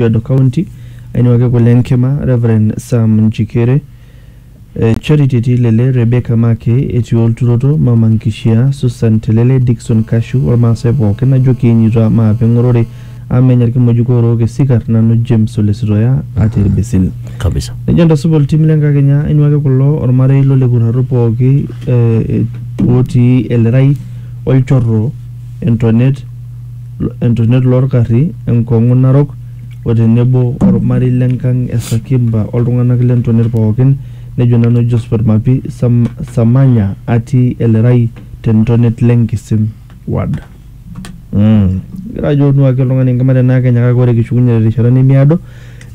Kajiado County ainuaki kule enkima Reverend Sam Njikere, eh, Charity Tilele, Rebecca Make, etii olturoto, Mama Nkishia, Susan Telele, Dickson Kashu, olmaasai pooki najo kiinyuta maape eng'orore amu menya ilkimojik oorook esikar nanu James Ole Sitoya atii ilbisil. kabisa Nejo entasupa oltim le nkakenya ainuaki kulo olmarei lo Lekurrarro pooki eh, otii Elerai, Olchorro, Entonet, entonet loo lkarri, enkong'u narok o tenebo olmarei le nkang e Sakimba o ltung'anak le ntonet pookin, nejo nanu Josphat Mapi Samanya atii Elerai te ntonet le Nkisim ward. Kigira aajo onuaki oltung'ani enkima te naa Kenya kake ore kishukunye te rishata nemeado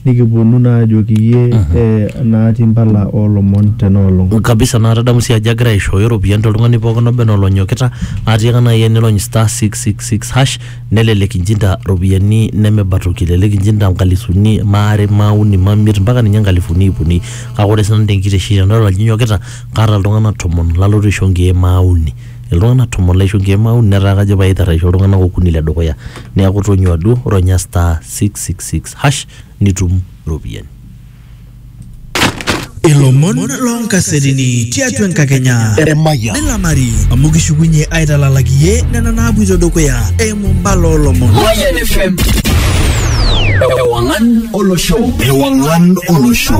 Nikipuonu naa ajoki iyie eh, naati impala oo lomon tena olong. kabisa naa tadamu sii ajo egira aishooyo iropiyiani toltung'ani pookin oba enaa olonyokita atiaka naaji enirony star 666 hash nelelek inchinda iropiyiani nemeba toki elelek inchinda inkalisuni maare mauni mamiet mpaka ninye inkalifuni iip uni kake ore sinanu tenkitesheni tenadol ajo inyokita kaata iltung'anak tomon lalotu aisho inkeek maauni iltung'anak tomon laisho inkeek maauni netaa kajo paitarraisho iltung'anak okuni ledukuya niaku tonyua duo ronya star 666 hash nitum iropiyiani. Ilomon loonkasetini tiatua enkakenya Emayian. nilamari amu kishukunye aitalalaki iyie nena naapoito dukuya eimu mbala oolomon. Mayan FM. Ewangan Olosho. Ewangan Olosho.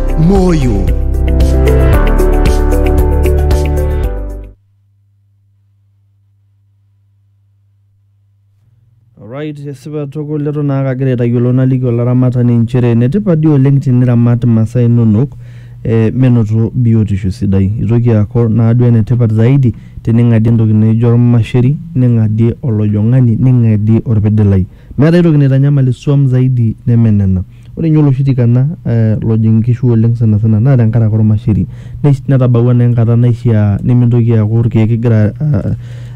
moyo Alright, esipa tukul letu naa kagira aitayiolo naliki olaramatani inchere enetipat dii oleng tiniramat imasaa inonok eh, menoto biotisho sidai itoki aaku naaduo enetipat zaidi tening'adie entoki naijo ormasheri ning'adie olojong'ani ning'adie orpidilai Meeta aitoki naitanyamal isuam zaidi neme nena. Ore ninye oloshi tikana lojing nkishu oleng sanasana naa tenkaraki olmasheri. Netabawua naa enkata naishiaa nimintoki aaku ilkeek igira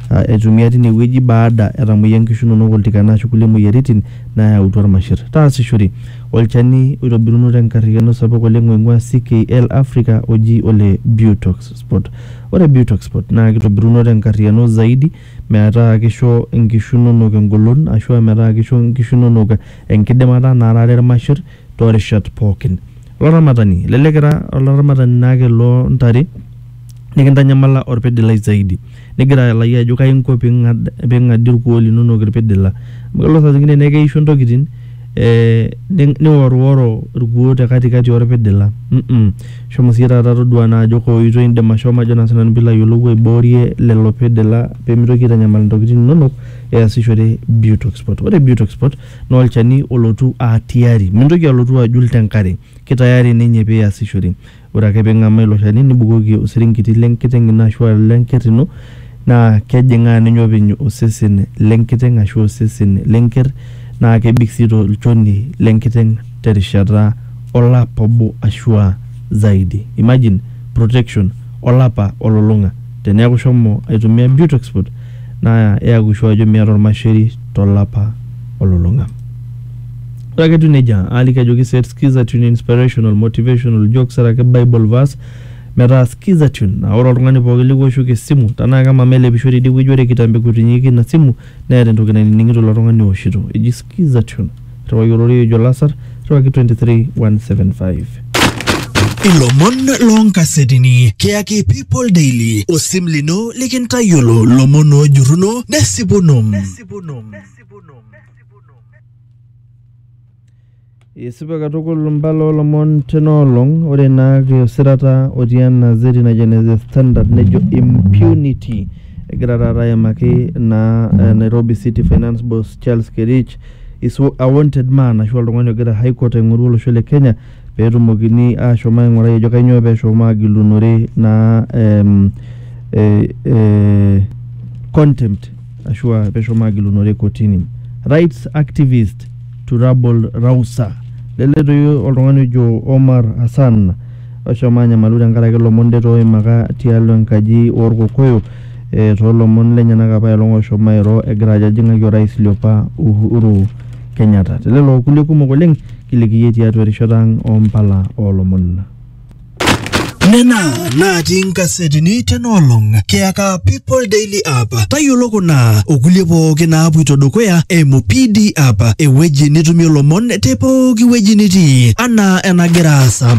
aitumia tine wueji baada etamoyia nkishu inonok oltikana ashu kulie moyiaritin naayautua ilmasher. Taasishore olchani oitobiruno tenkariyiano sapuk oleng oing'uaa CKL Africa oji ole Butox Spot. Ore Butox Spot naa keitobiruno tenkariyiano zaidi metaa keisho inkishu inonok engolon ashu metaa keisho inkishu inonok enkidimata naarare ilmasher too rishat pooki. Olaramatani, elelek ira olaramatani naake loo ntare nikintanyamala olpidilai zaidi nigira ayiolou ajo kaji inko pee ing'adie ilkuoo linono ilpidila. Amu kelo saa zingine neisho intokitin. ee niworiworo irkuoo te katikati orpidila mm shomo siyie taata toduaa naa ajo kaa oitoi indim ashomo ajo naa sinanu piilo ayiolou aiboorie lelo pidila pemitoki aitanyamal intokitin inonok easishore beauty export. Ore beauty export naa olchani olotu aa tiari mintoki alotu ajul te nkare kitayari ninye piasishore. Ore ake ping'amaa ilo shani nibukoki osirinkiti le nkiteng' ino ashu aa le nker ino naa kejing'aa ninye openy osesen le nkiteng' ashu osesen le nker naa kebik sii to lchoni le nkiteng' te rishata olapa obo ashu aa zaidi. Imagine protection olapa olulung'a. Teneeku ishomo aitumia Butexport naa iyaku sure ajo miata olmasheri to lapa olulung'a. Ore ake etiu nejia, aaliki ajoki set Skizatune inspirational, motivational, jokes araki Bible verse metaa Skizatune naa ore oltung'ani pooki likiwoshoki esimu tenaa kemama elepisho tidie wueji ore kitambo ekutinyieki ina simu neeta entoki nainining'ito ilo tung'ani owoshito eji Skizatune. Irriwaki ororei ojo Lasar, irriwaki 23175. Ilomon loonkasetini kiyaki People Daily, osim lino likintayiolo lomon oojurruno nesipuno. Isipa katukul mbala olomon tena olong ore naa kiusirata otii ena zeti najo ene The Standard nejo impunity egira taata aimaki naa eh, Nairobi City Finance Boss Charles Kerich is a wanted man ashu oltung'ani ogira High Court aing'oru olosho le Kenya peetumokini ashom aing'urai ajo kanyoo peeshomo agilunore naa em, eh, eh, contempt ashua peshomo agilunore kotini. Rights activist Turabol Rausa leletoi oltung'ani ojo Omar Hassan oshomo anyamalu tenkaraki lomon det oimaka tialo enkaji orkokoyo e, toolomon lenyenak apa elong oshomo airo egira ajo ajing'aki orais liopa Uhuru Kenyatta. Telelo okulie kumok oleng kilikiyie tiatua erishata ang ompala oolomon. Nena natii nkasetini tena olong kiyaka People Daily App. Tayiolo kuna okulie pooki naapuito dukuya eimu PD App, ewueji nitumie lomon te pooki wueji nitii anaa enagira aasa.